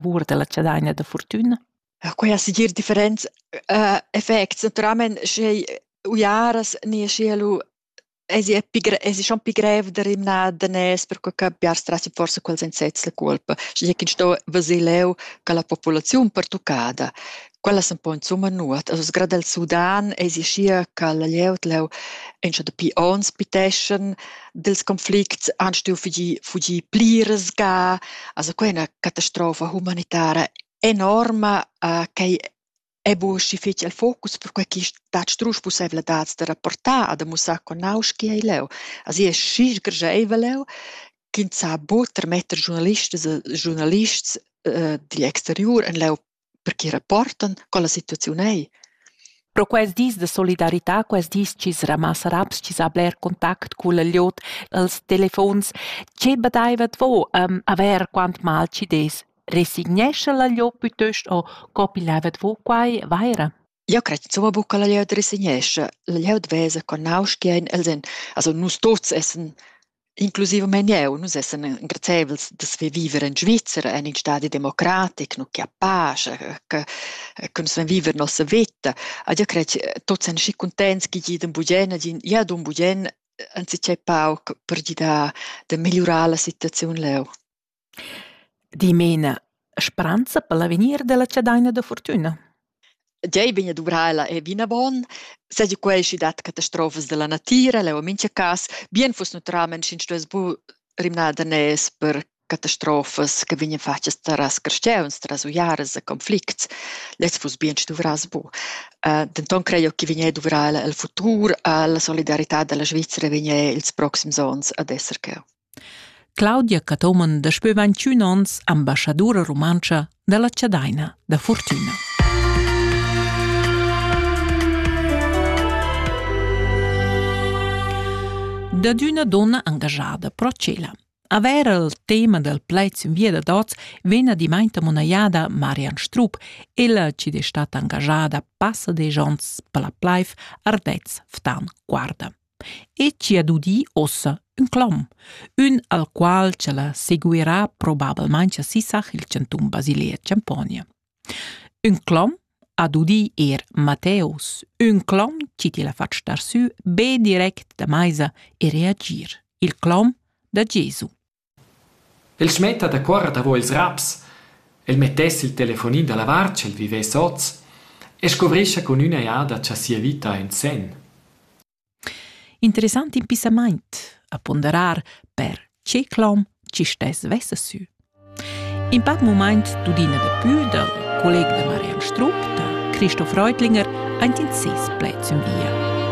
bur dalla chadaina da fortüna? Quai ha segir differents uh, effects. Naturalmein sche uiaras ni sche lu esi è pi, esi schon pi grev da rimnar daners per che biar strassi forse quels en sez la colpa. Sche che sto vasileu ca la popolaziun pertuccada. Quellas empau insumma nuot. Also sgrada il Sudan eisi aschia che la glieud leu ein schon dapi onns piteschan dils conflicts, han stuiu fugir, fugir pliras ga. Also quei è una catastrofa humanitara enorma, eh, quei è bu aschi fetg el focus, perquei ch'i stat strusch pussevladads da rapportar e da mussar co nauschi ei leu. Also ei schi sgrescheivel leu ch'ins sa bu termetter giurnalistas e giurnalists eh, digl exteriur en leu perche rapportan co la situaziun ei. Pro quels dis de solidarità, quels dis chi's ramassa raps, chi sa bler contact cul liot els telefons, che badaiva dvo um, avair quant mal chi des? Resignescha la liot pütöst o copilaiva dvo quai vaira? Jau cret insumma buca la glieud resignescha. La glieud vesa co nauschian els ein, also nus tuts essan, inclusivamein jeu, nus essan engraziaivels da saver viver en Svizra, en in stadi democratic, nu che a pasch, che, che nus van viver nossa veta. Ed io cret, tuts ein schi cuntents che gi d'in bugen, gin gia d'in bugen anzicchè pauc per gidar da megliurar la situaziun leu. Dimena, speranza per l'avegnir dalla chadaina da fortüna? Tgei vegn a duvrar ella è vinavon. Seigi quei sch'i dat catastrofas dalla natira, leu en mintga cass, bien fuss naturalmein sch'ins stuess buc rimnar daners per catastrofas che vegnien fatgas tras carstgauns, tras uiaras e conflicts. Lez fuss bien sch'i duvrass buc. denton crei jeu che vegnir a duvrar ella el futur, alla solidaritat dalla Svizra vegnir ils proxims onns ad esser cheu. Claudia Cathomen daspö 21 ons ambaschadoura rumantscha da la Chadaina da Furtüna. Dad üna donna angajada pro cela. Avair il tema del plaids in via da dots vegn adimainta monaiada Marian Strup, ella ci de stata angajada passa de jons per la plaif Ardez Ftan Guarda. e ci ha dudì ossa ün clom, ün al qual cha la seguirà probablmaing cha sisach il chantun Basilea Champonia. Ün clom ha dudì eir Matteus, ün clom chi til ha fat star sü be direct da maisa e reagir, il clom da Gesu. El smetta dacuora davo ils raps, el mettess il telefonin dalla vart sch'el vivess oz e scuvrischa cun üna jada cha sia vita ha ün sen. Interessant impissamaint a ponderar per che clom chi stess vessa sü. In pac mumaint tudina da pü dal collega da Marian Strup da Christoph Reutlinger aint in seis pled sün via.